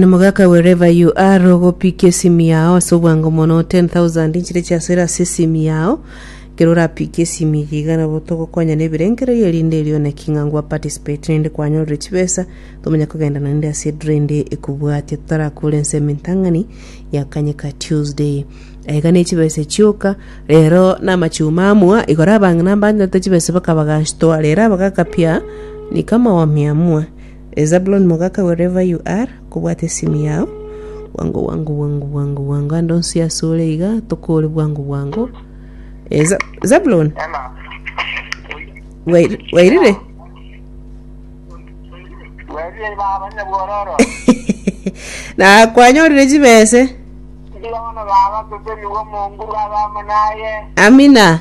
Na mogaka wherever you are ogopikia esimi yao ase obwango mono 10000 inchire chia sera ase esimi yao ekero orapikia esimi eye iga nabo togokonya na ebirengererio erinde erio one ki ng'a ngwa participate rinde kwanyorire chibesa tomanya kogendana rinde ase edura ende ekobwatia totarakora ense emintang'ani ya kanyeka Tuesday aiga ne chibesa chioka rero na amachuma amua igora abang'ina mbanyete chibesa bakabaganshitua rero abagaka pia ni kama wamia amua E Zabuloni mogaka wherever you are kobwate esimu yao bwango bwango bwango bwango bwango ande onsi ase ore iga tokore bwango bwango E Za- Zabuloni Ena. wair- wairire Werie baba nyabwororo. na kwanyorire chibese Ndiona baba sese niwo monguru abamo naye. amina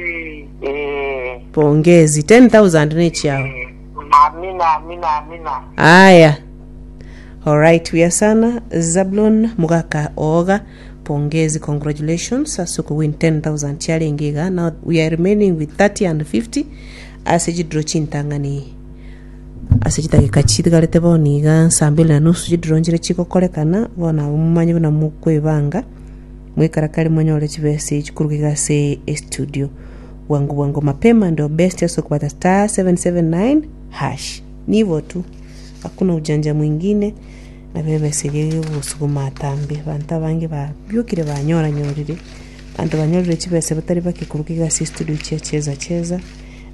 Ee. Pongezi. 10,000 nechiao. Ee. Amina, amina, amina. Aya. Alright, buya sana. Zablon Mugaka Oga. Pongezi, congratulations. Ase okowin 10,000 chiarenge iga. Now we are remaining with 30 and 50. Ase chidro chintang'ani. Ase chidageka chitigarete bono iga saa mbili na nusu chidro nchire chigokorekana. Bono abwo momanye buna mokwebanga. Mwekarakare monyore chimessage korwa iga ase estudio. Bwango bwango mapema and your best ase okobata star 779 hash. Nibo tu. Hakuna ujanja mwingine na bebesege gosuguma atambe. Banto abange babiokire banyora nyorire. Banto banyorire chibesa batari bake korwa iga ase estudio chia cheza cheza.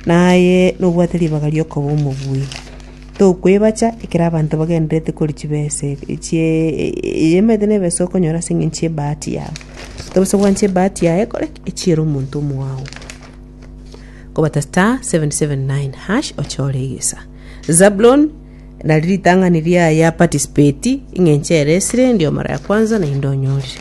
Naye nobwate ribaga riokoba omobui. Tokwebacha ekero abanto bagendererete koria chibesa ebe chie emerete na ebesa okonyora ase eng'encho y'ebahati yabo. Tobosa gwancha ebahati yaye ekore ki? Echiere omonto omwao. Kobata star 779 hash ochore egesa. Zablon nari ritang'ani riaye aparticipeti eng'encho ere esire ndio mara ya kwanza naende onyorire.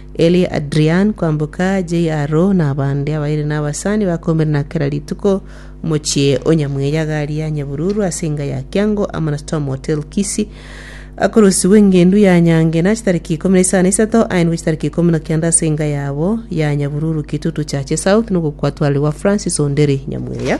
Elie Adrian kwamboka, JRO, na abande abairi nabasani bakombire na kera rituko omochie o Nyamweyaga ria Nyabururu ase enga ya Kiango amo na Storm Hotel Kisii. Akorosirwe engendu ya Nyange na chitariki ikomi na isano na isato aenwe chitariki ikomi na kenda ase enga yabo ya Nyabururu Kitutu Chache South nogokwatwarerwa Francis Onderi Nyamweya.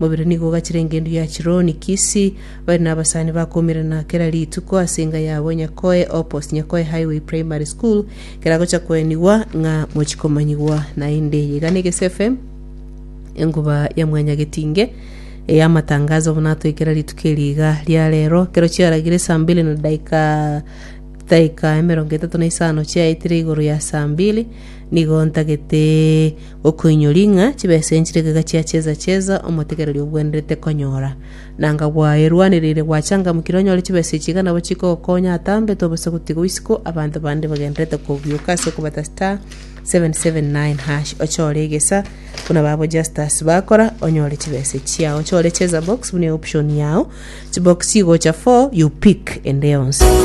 Mobere nigo ogachire engencho ya Chironi, Kisi, bare nabasani bakoumerana kera rituko ase enga yabo Nyakoe Opposite Nyakoe Highway Primary School, ekero agocha koenigwa ng'a mochi komanyigwa naende. Eye iga negese FM, enkuba ya mwanya getinge eya matangazo buna atoe kera rituko eri iga ria rero. Ekero chiaragire saa mbili na daika daika emerongo etato na isano chiaetire igoro ya saa mbili nigo ntagete Okoinyoria ng'a chibesa enchire igaiga chia cheza cheza omotegereri obwenerete konyora. Nanga bwaye rwanereire gwachangamukire onyore chibesa echi iga nabo chikogokonya atambete obosa gotiga isiko abanto bande bagendererete kogioka ase okobata star 779# ochore egesa buna babo Justus bakora onyore chibesa chiao chore cheza box buna eoption yao chibox chigocha 4 you pick ende yonsi.